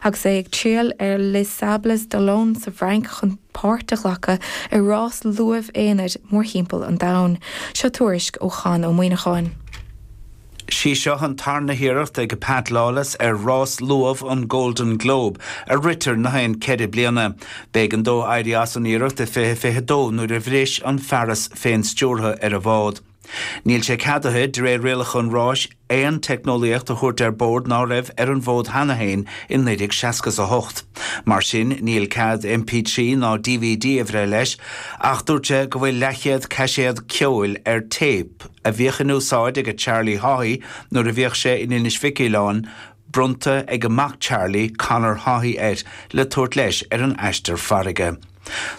Agus é ag triall ar Les Sables d'Olonne sa bhFrainc chun páirt a ghlacadh i rás luamh aonair mórthimpeall an domhain, seo tuairisc ó Chonn Ó Muíneacháin. Sí seo an tarna hiarracht ag Pat Lawless ar rás luamh an Golden Globe, a ritear na haon ceithre bliana. B'éigean dó éirí as an iarracht i 2022 nuair a bhris an fearas féin-stiúrtha ar a bhád. Níl sé ceadaithe, de réir rialacha an ráis, aon teicneolaíocht a thabhairt ar bord ná raibh ar an bhfód cheana féin i 1968. Mar sin, níl cead MP3 ná dvd a bhreith leis, ach dúirt sé go bhfuil leathchéad caiséad ceoil ar téip a bhíodh in úsáid aige Charlie Haughey nuair a bhíodh sé in Inis Mhic Uileáin, bronnta aige mac Charlie, Conor Haughey air le tabhairt leis ar an aistear farraige.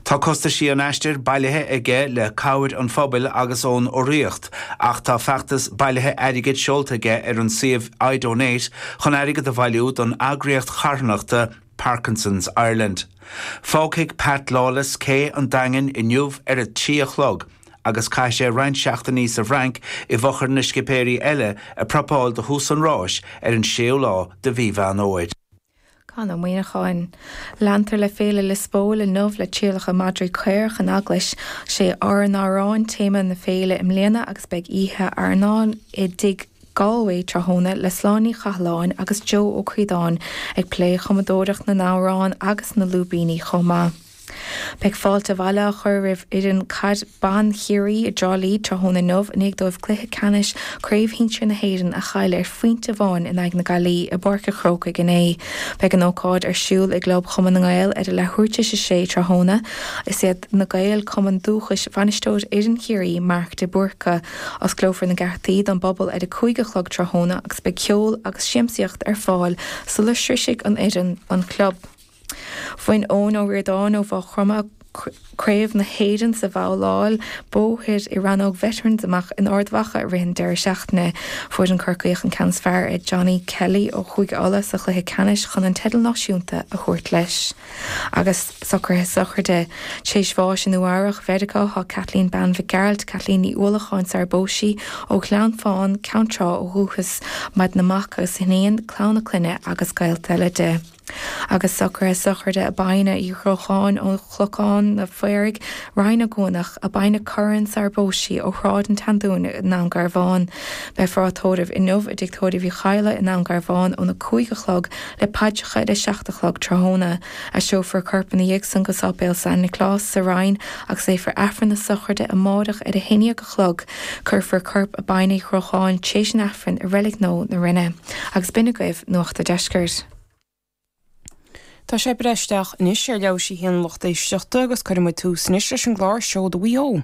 Tá costaisí an aistir bailithe aige le cabhair an phobail agus ón urraíocht ach tá feachtas bailithe airgid seolta aige ar an suíomh iDonate chun airgead a bhailiú don eagraíocht charthanachta Parkinson's Ireland. Fágfaidh Pat Lawless cé an Daingin inniu ar a trí a chlog. agus caithfidh sé roinnt seachtainí sa bhFrainc i bhfochair na scipéirí eile ag prapáil do thús an ráis ar an 6ú lá de Mhí Mheán Fhómhair. Conn Ó Muíneacháin. Leantar le Féile Lios Póil inniu le trialacha madraí caorach in Eaglais. Sé ár n-amhráin téama na féile i mbliana agus beidh oíche airneáin i dTigh Galway tráthnóna le Sláine Ní Chathalláin agus Joe Ó Críodáin ag plé cumadóireacht na n-amhrán agus na lúibíní chomh maith. Beidh fáilte abhaile á chur roimh fhoireann caid ban Chiarraí i dTrá Lí tráthnóna inniu i ndiaidh dóibh cluiche ceannais Chraobh Shinsir na hÉireann a chailleadh ar phointe amháin in aghaidh na Gaillimhe i bPáirc a' Chrócaigh inné. Beidh an ócáid ar siúl i gClub Chumann na nGael ar a leathuair tar éis a sé tráthnóna. Is iad Na Gaeil cumann dúchais bhainisteoir fhoireann Chiarraí, Mark de Búrca. Osclófar na geataí don bpobal ar a cúig a chlog tráthnóna agus beidh ceol agus siamsaíocht ar fáil sula sroisfidh an fhoireann an club. Bhain Eoin Ó Ríordáin ó Mhaigh Chromtha craobh na hÉireann sa bhabhláil bóthair i rannóg Veterans amach in Ard Mhacha i rith an deireadh seachtaine. Fuair an Corcaíoch an ceann is fearr ar Johnny Kelly ó Chúige Uladh sa chluiche ceannais chun an teideal náisiúnta a thabhairt leis. Agus socruithe sochraide tar éis bháis i Nua-Eabhrach Mheiriceá, tá Kathleen Bean Mhic Gearailt, Kathleen Ní Uallacháin sara bpós sí, ó Ghleann Fán, Ceann Trá ó dhúchas, maireann a mac agus iníon, clann a clainne agus gaolta eile di. Agus socruithe sochraide Abina Uí Dhrócháin ó Chnocán an Phaoraigh, Rinn Ó gCuanach, Abina Curran sara bpós sí ó Shráid an tSeandúin i nDún Garbháin. Beifear á tórramh inniu i dTigh Tórraimh Uí Chadhla i nDún Garbháin óna cúig a chlog le paidreacha ar a seacht a chlog tráthnóna. Aistreofar a corp ina dhiaidh san go Sáipéal San Nioclás sa Rinn agus léifear Aifreann na sochraide amáireach ar a haon dhéag a chlog. Cuirfear corp an Bhean Uí Chrócháin tréis an Aifrinn i Reilig Nua na Rinne. Agus b'in agaibh Nuacht a' Deiscirt. Téaspáin isteach anois ar leabhar sibhse an lucht éisteachta agus cuirfidh muid tús anois leis an gclár Seoda Mhaigh Eo.